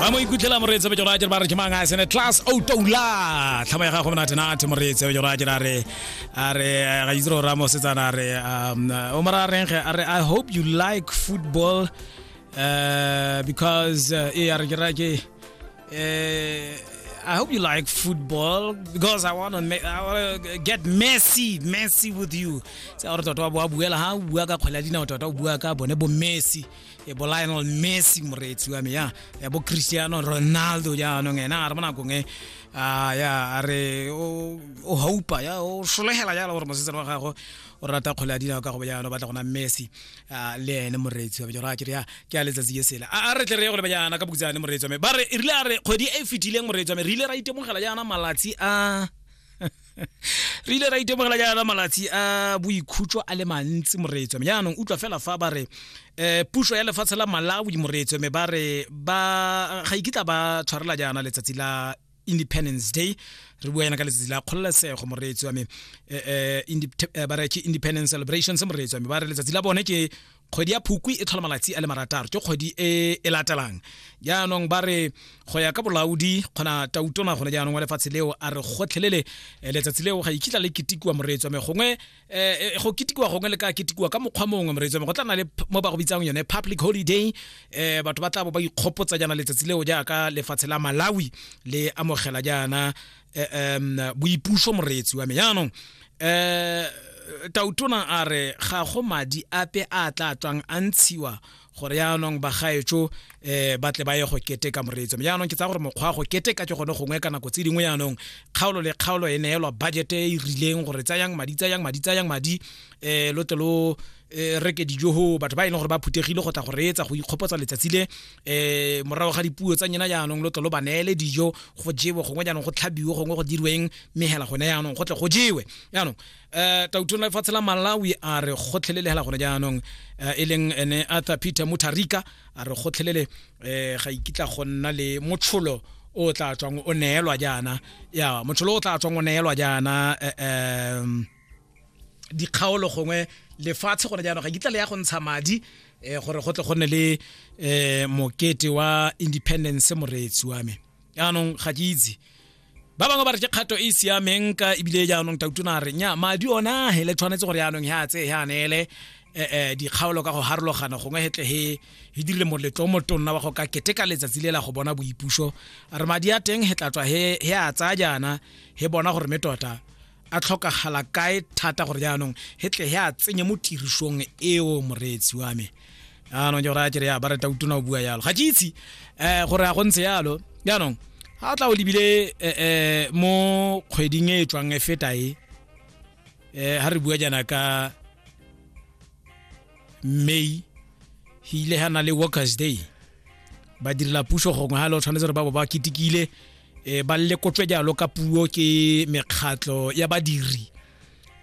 a mo ikutlhela moreetse bejoro a jere ba re jemang a sene class outoula tlhamo ya gago monate nate moreetse bejoro a jere a re a re eh, ga itse gore a mosetsana a re um, o mora a reng ge a re i hope you like football uh, because uh, e a re ke ra ke eh, I hope you like football because I want to make, I want to get Messi Messi with you. Sa gore tota wa bua buela ha bua ka kgwele ya dinao tota o bua ka bone bo Messi. e bo lionel messi moreetsi wa me ya ya bo cristiano ronaldo jaanong ena a re mo nakong e ah, ya a re o o haupa ya o solegela jalo gore mosetsana wa gago o rata kgole ya dinao ka go bojana o batla gona messi ah, le ene moreetsi wa me jora kere ya ke a letsatsi ke sela a a re tle re ye go lebajana ka bokutsane moreetsi wa me ba re e rile a re kgwedi e e fetileng moreetsi wa me re ile ra itemogela jaana malatsi a re ile ra itemogela jaana malatsi a boikhutso a le mantsi moreetswe jaanong utlwa fela fa ba re um puso ya lefatshe la malawi moreetswe me ba re ba ga ikitla ba tshwarela jaana letsatsi la independence day re bua yana ka letsatsi la kgololesego moreetsi wa me um ba re ke independence celebrations moreetsi wa me ba re letsatsi la bone ke kgwedi ya phukwi e tlhola malatsi a le marataro ke kgwedi e e latelang jaanong ba re go ya ka bolaodi kgona tautona gone jaanong wa lefatshe leo a re gotlhelele eh, letsatsi leo ga ikitla le ketikiwa moreetswa me gongwe um go ketikiwa gongwe le ka ketikiwa ka mokgwa mongwe moreetswa me go tla na le mo ba go bitsang yone public holiday um batho ba tla bo ba ikgopotsa jaana letsatsi leo jaaka lefatshe la malawi le amogela jaana eh, um boipuso moreetsi wa me yaanong um tautona a re ga go madi ape a tla tswang a ntshiwa gore yaanong bagaetso um eh, ba tle ba ye go keteka moreetso yaanong ke tsa gore mokgwa go keteka ke gone gongwe ka nako tse dingwe yaanong kgaolo le kgaolo e neelwa budget e e rileng gore tsayang madi tsayang madi tsayang madi um lo tle lo e re ke dijo ho batho ba e leng gore ba phuthegile go tla go reetsa go ikgopotsa letsatsi le um morago ga dipuo tsa nyena jaanong lo tlo lo ba neele dijo go jewe gongwe jaanong go tlhabiwe gongwe go dirweng mme hela gone jaanong go tle go jewe jaanong um tautong la lefatshe la malawi a re gotlhelele hela gone jaanong um e leng ene arthur peter mutarika a re gotlhelele um ga ikitla go nna le motsholo o tla tswang o neelwa jaana ya motsholo o tla tswang o neelwa jaana um dikgaolo gongwe lefatshe gone jaanong ga kitla le ya go ntsha madi um gore go tle go nne le um mokete wa independence moreetsi wa me jaanong ga ke itse ba bangwe ba re ke kgato e e siameng ka ebile jaanong tautona re nya madi ona he le tshwanetse gore jaanong he a tseye he a neele um dikgaolo ka go harologana gongwe hetle he he dirile moletlo o motonna wa go ka keteka letsatsi le la go bona boipuso re madi a teng he tla tswa he a tsaya jaana he bona gore me tota a tlhokagala kae thata gore jaanong he tle he a tsenye mo tirisong eo moreetsi wa me jaanong ke gore a kere ya ba reta utona o bua yalo ga ke itse um gore a go ntse yalo jaanong ga o tla o lebile um mo kgweding e e tswang e feta e um ga re bua jaana ka may go ile ga na le workers day ba direla puso gongwe ga le o tshwanetse gore ba bo ba ketekile e ba lekotswe jalo ka puo ke mekgatlho ya badiri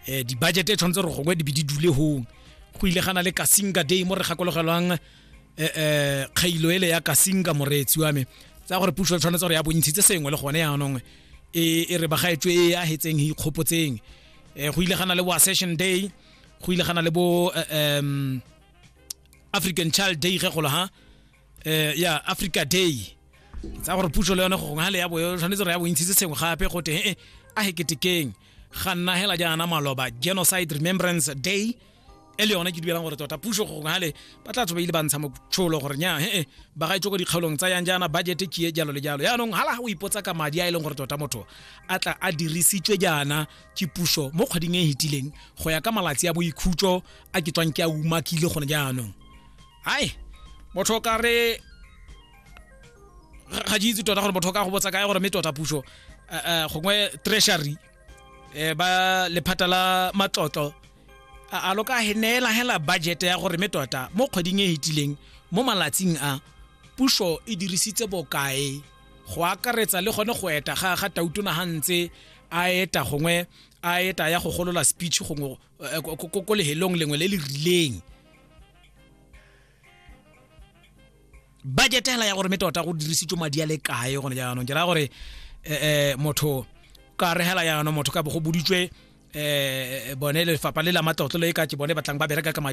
um dibajete e tshwanetse re gongwe di be di dule hong go ile gana le kasinga day mo re gakologelwang um kgailo ele ya kasinga moreetsi wa me tsa gore puso tshwanetse gore ya bontshitse sengwe le gone yaanong e, e re bagaetswe e ya hetseng e ikgopotseng um go ile gana le wa session day go ile gana le bo um african child day ge golo ha eh ya africa day tsa gore puso le yone go gongwe ga le ya boyo tshwanetse re ya bontshitse sengwe gape go te ee a he ketekeng ga nna hela jaana maloba genocide remembrance day e le yone ke dubelang gore tota puso go gongwe gale ba tla tsobeile ba ntsha motsholo gore nya ee ba ga itse ko dikgaolong tsa yang jaana budget ke jalo le jalo yaanong hala ga o ipotsa ka madi a e leng gore tota motho a tla a dirisitswe jaana ke puso mo kgweding e e hetileng go ya ka malatsi a boikhutso a ke tswang ke a umakile gone jaanong hai motho o ka re ga ke itse tota gore motho o ka go botsa kae gore mme tota puso eh, eh, gongwe treasury eh, ba lephata la matlotlo a a lo ka he- neela hela budget ya gore mme tota mo kgweding e hetileng mo malatsing a puso e dirisitse bokae go akaretsa le gone go eta ga ga tautona ga ntse a eta gongwe a eta ya go golola speech gongwe eh, ko- ko ko- ko lehelong lengwe le le rileng budget hela ya gore me tota go dirisitswe madi a le kae gone jaanong ke raya gore eh, eh, motho ka re hela jaanong motho ka bo go boditswe eh, bone lefapha le la matlotlo le ka ke bone batlang ba bereka ka madi